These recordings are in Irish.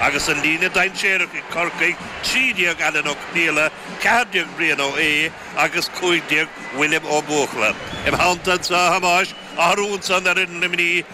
Agus an líne dainséarach ag Corcaigh, 13 Alan Ó Conaola, 14 Brian Ó hAodha agus 15 William Ó Buachalla, im theanntasa, a Thomáis, athrú ansan ar fhoireann Luimnigh,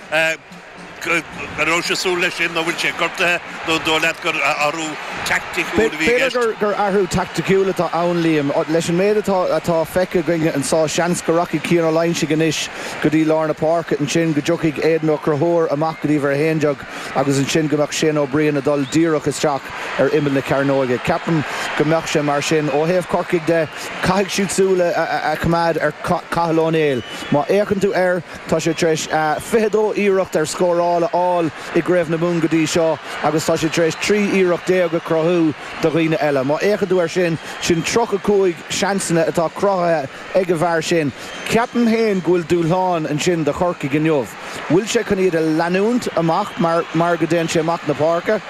an rabhais ag súil leis sin nó bhfuil sé gortaithe nó an dóigh leat gur athrú teaicticiúil a bhí i gceist? B'fhéidir gur athrú teaicticiúil atá ann, Liam. Leis an méid atá feicthe againn anso seans go rachaidh Cian Ó Loingsigh anois go dtí lár na páirce. Ansin go dtiocfaidh Aidan Ó Conchúir amach go dtí uimhir a haon déag. agus ansin go mbeadh Shane Ó Briain ag dul díreach isteach ar imeall na cearnóige. Ceapaim go mbeadh sé mar sin. Ó thaobh Corcaigh de, caithfidh siad súil a choimeád ar Chathal Ó Néill. Má fhéachann tú air, tá sé tar éis 22 iarracht ar scóráil a fháil i gCraobh na Mumhan go dtí seo agus tá sé tar éis 13 iarracht a chruthú do dhaoine eile. Má fhéachann tú air sin, sin 35 seansanna atá cruthaithe. ag an bhfear sin. Ceapaim féin go bhfuil dúshlán ansin do Chorcaigh inniu. An bhfuil sé chun iad a leanúint amach mar go dtéann sé amach na páirce?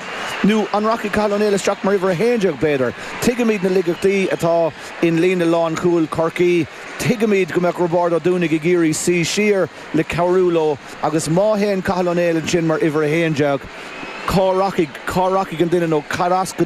Nó an rachaidh Cathal Ó Néill isteach mar uimhir a haon déag b'fhéidir? Tuigimid na laigeachtaí atá in líne lánchúil Chorcaí. Tuigimid go mbeadh Roibeárd Ó Dúnaigh ag iarraidh suí siar le cabhrú leo agus má théann Cathal Ó Néill ansin mar uimhir a haon déag cá rachaidh cá rachaidh an duine nó cad as go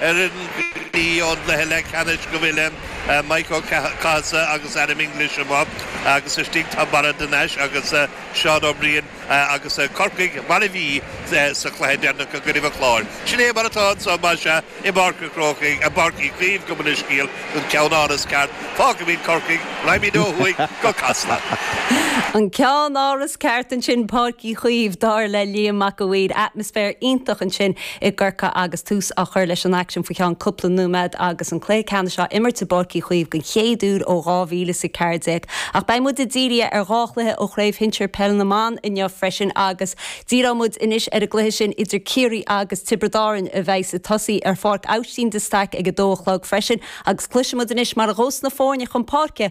Fhoireann Luimnigh ón gcluiche leathcheannais go bhfuileann Maidhc Ó Cathasaigh agus Adam English amuigh agus istigh tá Barra de Nais agus Seán Ó Briain agus Corcaigh mar a bhí sa chluiche deireanach i gcoinnibh an Chláir. Sin é mar atá anso más ea i bPáirc an Chrócaigh, i bPáirc Uí Chaoimh gabh mo leithscéal, an ceannáras ceart. Fágfaimíd Corcaigh, raghaimíd ó thuaidh go Casla. An ceannáras ceart ansin Páirc Uí Chaoimh dar le Liam Mac a' Mhaoir. Atmaisféar iontach ansin. i gCorcaigh agus tús á chur leis an aicsean faoi cheann cúpla nóiméad agus an cluiche ceannais á imirt i bPáirc Uí Chaoimh den chéad uair ó 2014. Ach beidh muid dírithe ar dhá chluiche ó Chraobh Shinsir Peil na mBan inniu freisin agus díreoidh muid anois ar an gcluiche sin idir Ciarraí agus Tiobraid Árann a bheas ag tosaí ar Pháirc Aibhistín de Staic ag 2 a chlog freisin agus cloisfidh muid anois mar a ghabhfas na foirne chun páirce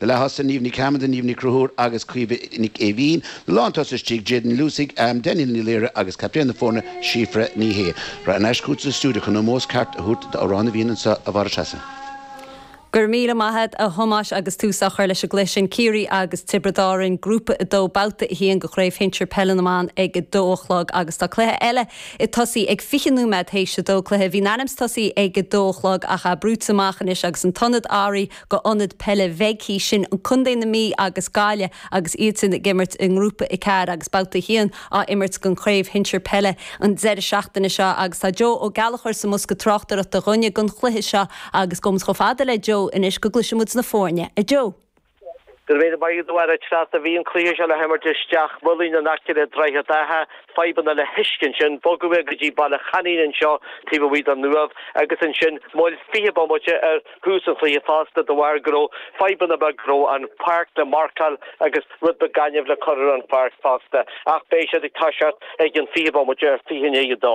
Na leaththosaigh, Niamh Ní Chearmada, Niamh Ní Chonchúir agus Caoimhe Ní Éimhín. Na lántosaigh istigh, Jadyn Ní Luasaigh, Danielle Ní Laoire agus captaen na foirne, Síofra Ní Shé. Thar n-ais chugat sa stiúideo chun ómós ceart a thabhairt d'Amhrán na bhFiann anso, a Mháire Treasa. Go raibh míle maith agat, a Thomáis, agus tús á chur leis an gcluiche sin, Ciarraí agus Tiobraid Árann, Grúpa 2, Babhta 1 de Chraobh Shinsir Peile na mBan ag 2 a chlog agus tá cluiche eile ag tosaí ag 20 nóiméad théis 2, cluiche a bhí in ainm's tosaí ag 2 a chlog ach atá brúite amach anois agus an t-ionad go ionad peile mbeidh sibse i gContae na Mí agus Gaillimh agus iad sin ag imirt i ngrúpa a ceathair agus babhta a haon á imirt den chraobh shinsir peile an deireadh seachtaine seo agus tá Joe Ó Gallchóir sa mbosca tráchtaireachta dhúinne don chluiche seo agus gabhfaidh muid chomh fada le Joe anois go gcloisfidh muid na foirne a Joe. De réir mar a mhair an tsraith a bhí an cluiche seo le himirt i Steach Maoilín in aice le Droichead Átha, fadhbanna le huisce ansin, bogadh é go dtí Baile Sheinicín anseo taobh amuigh den Uaimh agus ansin moill 20 bomaite ar Tús an chluiche fosta de bharr go raibh fadhbanna beaga, go raibh an pháirc le marcáil agus rud beag gainimh le cur ar an pháirc fosta ach beidh siad ag toiseacht ag an 20 bomaite, 20 i ndiaidh a dó.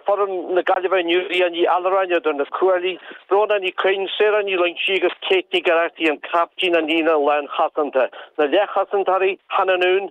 Foireann na Gaillimhe inniu, Leah Ní Allmhuráin idir na cuaillí, Bróna Ní Chuinn, Sarah Ní Loingsigh agus Kate Nic Oireachtaigh an caiptín, sa líne lánchosanta, na leathchosantóirí, Hannah Noone,